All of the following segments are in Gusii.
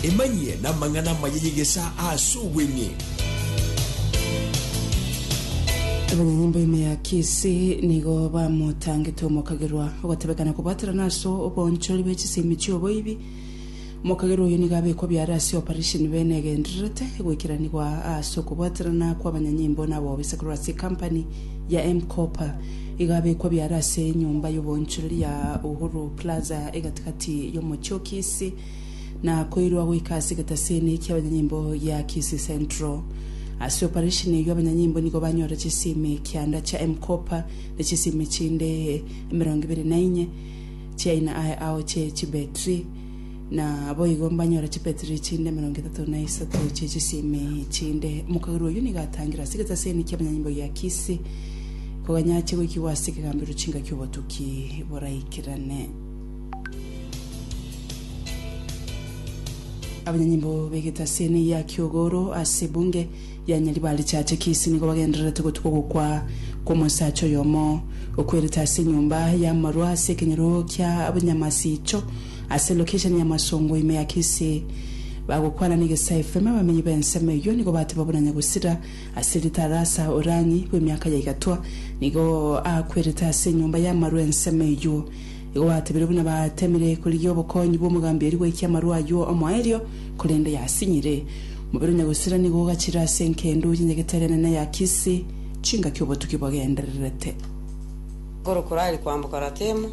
Emanyie namang'ana amaya y'egesaa aase obweng'e. Abanyanyimbo ime ya Kisii nigo bamotangete omokagerwa ogotebekana kobwaterana ase oboonchori bwe chisemi chi'oboibi. Omokagerwa oyo nigo abekwa biara ase oparesheni bene egendererete goikeranigwa ase okobwaterana kw'abanyanyimbo na aboobe ase korwa ase ekampani ya M-Kopa. Igabekwa biara ase enyomba y'oboonchoreri ya Uhuru Plaza egati-gati y'omochie o Kisii, na koirwa goika ase egetaseni kia abanyanyimbo gia Kisii Central. Ase oparesheni eyio abanyanyimbo nigo banyore chisimi kianda chia M-Kopa na chisimi chinde emerongo ibere na inye chiaina aye ao chie chibetri. Na boigo mbanyore chipetri chinde emerongo etato na isato chie chisemi chinde. Omokagera oyio nigo atangire ase egetasemi ki'abanyanyimbo gia Kisi, koganya achie goikigwa ase ekegambero chinka ki'obotuki boraikerane. Abanyanyimbo b'egetasemi gia Kiogoro ase Bunge ya Nyaribari chiacha Kisi nigo bagendererete gotuka ogokwa kw'omosacha oyomo okwerete ase enyomba y'amarwa ase ekenyoro ki'abanyamasiicho. Ase location ya Masongo ime ya Kisii, bagokwana n'egesae efirima abamenyi b'ensemo eyio nigo bateba buna Nyagusira ase Ritarasa Oranyi bw'emiaka ya igatwa nigo akwerete ase enyomba y'amarwa ensemo eyio. Igo batebire buna batemire korigia obokonyi bw'omogambi oria goikia amarwa ayio omoerio korende yasinyire. Omobere o Nyagusira nigo ogachire ase enkendo y'enyagetari enene ya Kisii chingaki obotuki bogendererete. Korokora aria koamboka Ratemu.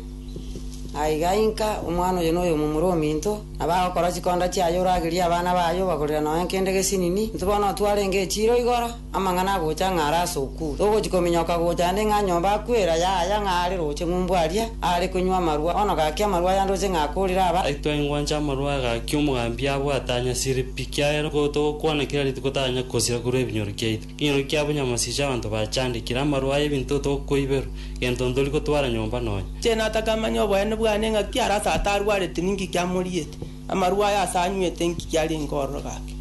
Aiga inka omwana oyo noyomo more ominto, na bagokora chikonda chiaye oragerie abana baye obagorera nonya nkende gesinini, intwe bono twarenge echiiro igoro, amang'ana agocha ng'a are ase okuu, togochi kominyoka gocha nde ng'a nyomba akwera yaya ng'a are roche ng'umbu aria are konywa amarwa, bono gaki amarwa aya ndoche ng'a akorire aba. Gaki twaingwanche amarwa aya gaki omogambia abwate anyasire pi, kiagera nigo togokwana kera rituko taranyare kosira korwa ebinyoro kiaito. Nigo kia obonyamasiicho abanto bachandekire amarwa aye ebinto tokoiberwa, gento ntori gotwara nyomba nonya. Inche nataka manye oboene bwane ng'aki arase ata arwarete ninki kiamoriete, amarwa aye ase anywete inki kiarenge ororo gake.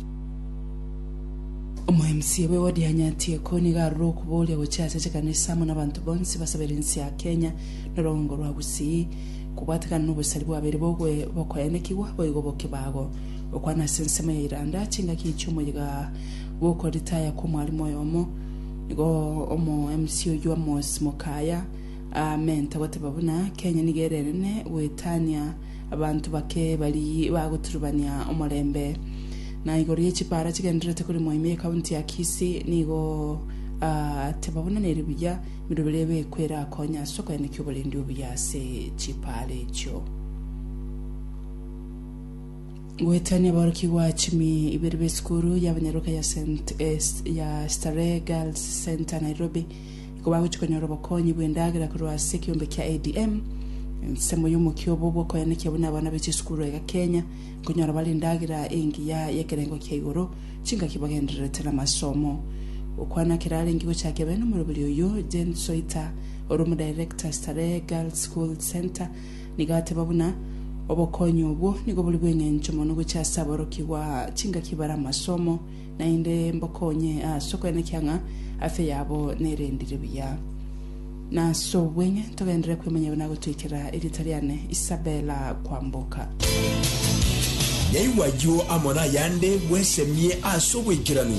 Omoemisia bwe wodi ya Nyatieko nigo arure okoboria gochia ase chikanisa amo nabanto bonsi basabera ense ya Kenya na orogongo rwa Gusii kobwatekana nobosari bwabeire bokoenekigwa boigo bokebago. Gokwana ase ensemo ya Iranda chingaki chiomoyiga gokoritaya kw'omwalimu oyomo, nigo omo MC oyio Amos Mokaya aamente goteba buna Kenya nigo erenene goetania abanto bake bari bagoturubania omorembe. Na igoro ye chipara chigendererete korimwa ime ye county ya Kisii nigo ateba buna neri buya emirobera ebekwe erakonye ase okoenekia oborendi obuya ase chipara echio. Goetania aborokigwa chimi ibere b'esukuru y'abanyaroka ya St. ya Starehe Girls Centre Nairobi nigo bagochia konyora obokonyi bw'endagera korwa ase ekeombe kia ADM. Ensemo y'omokia obo bw'okoyanekia buna abana be chisukuru aiga Kenya nkonyora bare endagera engiya y'ekerengo kia igoro chingaki bagendererete namasomo. Gokwana kerarenge gochakia bene omoroberi oyio Jane Soita ore omodirector Starehe Girls School Centre Nigo ateba buna, Obokonyi obwo nigo bori bw'engencho mono gochia ase aborokigwa chingaki bare amasomo, naende mbokonye ase okoenekia ng'a afya yabo nerendire buya. Nas'obweng'e togenderere kwemanya buna agotoikera erieta riane Isabella Kwamboka. Naigwe ayio amo nayande bwesemie ase obwaikeranu.